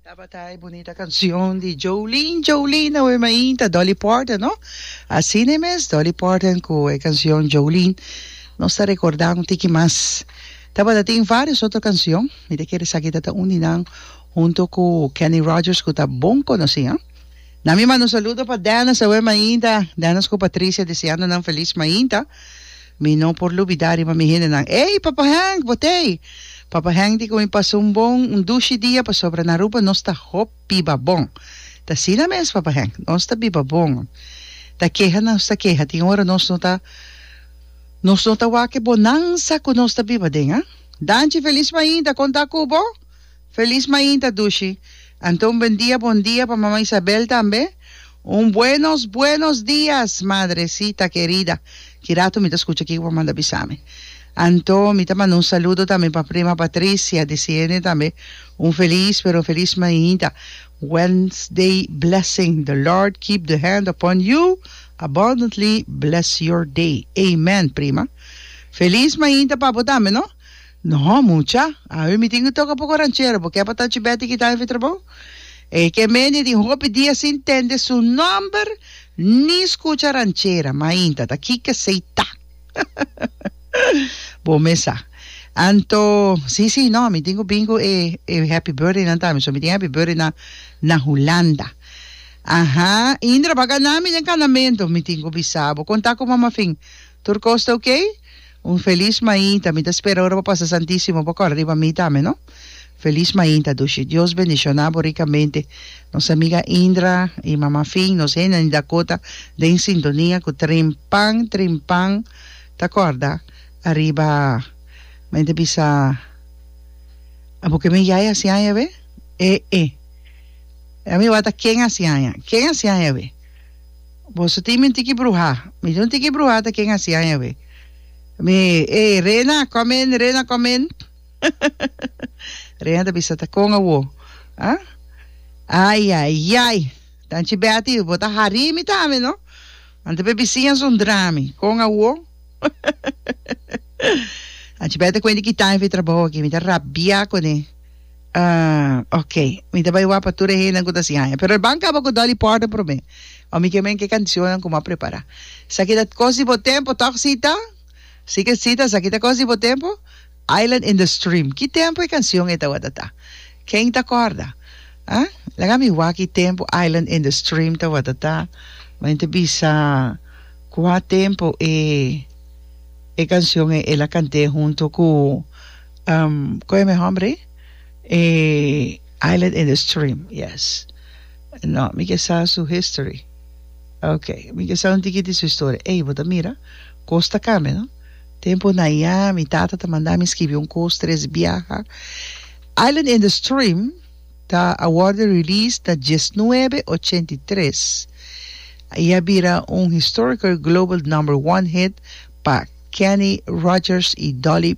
Tabata e bunita cancion di Jolene Jolene awor mainta Dolly Parton no asina mes Dolly Parton cu e cancion Jolene nos ta recorda un tiki mas tabata tin varios otro cancion mi ta kere sa kita ta un di nan hunto cu Kenny Rogers cu ta bon conoci ha na mi manda un saludo pa Dennis awor mainta Dennis cu Patricia deseando nan feliz mainta. Mi no por lubidá riba mi hendenan, Ey, Papa Henk, bo t'ey! Papa Henk di ku mi pasá un bon, un dushi dia pasobra na Aruba nos ta hopi biba bon. T'asina mes, Papa Henk, nos ta biba bon. Ta keha nos ta keha, tin ora nos no ta nos no ta wak e bonansa ku nos ta biba den, a? Danchi, felis mainta, kon ta ku bo? Felis mainta Dushi, Anto un bendia bon dia pa Mama Isabel tambe? Un buenos buenos dias madrecita querida, kirato mi ta skucha kiko pa manda bisa mi. Anto mi ta manda un saludo tambe pa prima Patricia disiende tambe un felis pero felis mainta Wednesday blessing the Lord keep the hand upon you abundantly bless your day amen prima felis mainta pa bo tambe no Nohó, mucha, awe mi tin cu toca poco ranchero, bo ke pa Tachi Betty kita hefe trabou? E ke mende tin hopi dia sin tende su nomber ni scucha ranchera, mainta ta kike sei ta. Bo mes sa. Anto, si, si, no, mi tin cu bin cu e Happy Birthday nan tambe, so mi tin Happy Birthday nan na Hulanda. Aha, Indra, bo a gana mi den canamento, mi tin cu bisa bo, con ta cu Mama Fin, Tur cos ta ok? Un feliz mainta, mi ta spera ora bo pasa Santisimo bo cora riba mi tambe no. Feliz mainta dushi. Dios bendiciona bo ricamente nos amiga Indra y mama Finn, nos henda di Dakota den sintonia cu Trimpan Trimpan ta corda ariba men ta bisa abo ke men yaya hasi aña awe? E e. Ami wata ken hasi aña? Ken hasi aña awe? Boso tin mi tiki bruha. Mi no tiki bruha ta ken asi aña we. Mi e Rena kom in Rena kom in Rena ta bisa ta kon awo ha ayayay tanchi Betty bo ta hari mi tambe no ante be bisiña son drami kon awo anchi Betty ta kuente ki time fi trabou aki mi ta rabia kune. Ah, ok. Mi ta bai wak pa tur e hendenan ku ta sin haña. Pero el ban kaba ku Dolly Parton promé. Wan mi ke men ke kanshonnan ku mi a prepará. Esaki ta kos di bo tempu, tòg si ta? Si ke si ta, esaki ta kos di bo tempu? Island in the Stream. Ki tempu e kanshon ei tabata ta? Ken ta kòrda? Ah, laga mi wak ki tempu Island in the Stream tabata ta. Men ta bisa kua tempu e kanshon ei el a kant'é huntu ku. Um, koe mi hombre? E Island in the Stream, yes. No, mi ke sa su history. Ok, mi ke sa un tiki di su historia. Ey, bo ta mira, kos ta kambia, no? Tempo na ya, mi tata ta manda mi skibi un kos, tres biaha. Island in the Stream ta a worde release na diesnuebe ochenta i tres. I a bira un historical global number one hit pa Kenny Rogers i Dolly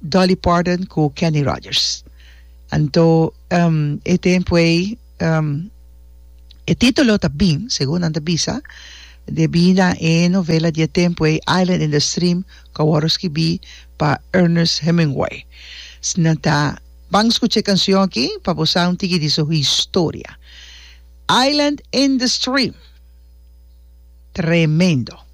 Dolly Parton ku Kenny Rogers. Anto e tempu ei e titulo ta bin, segun nan ta bisa, debí na e novela di e tempu ei Island in the Stream ku a wòrdu skibí pa Ernest Hemingway. Si nan ta ban skucha e kanshon aki pa bo sa un tiki di su historia. Island in the Stream. Tremendo.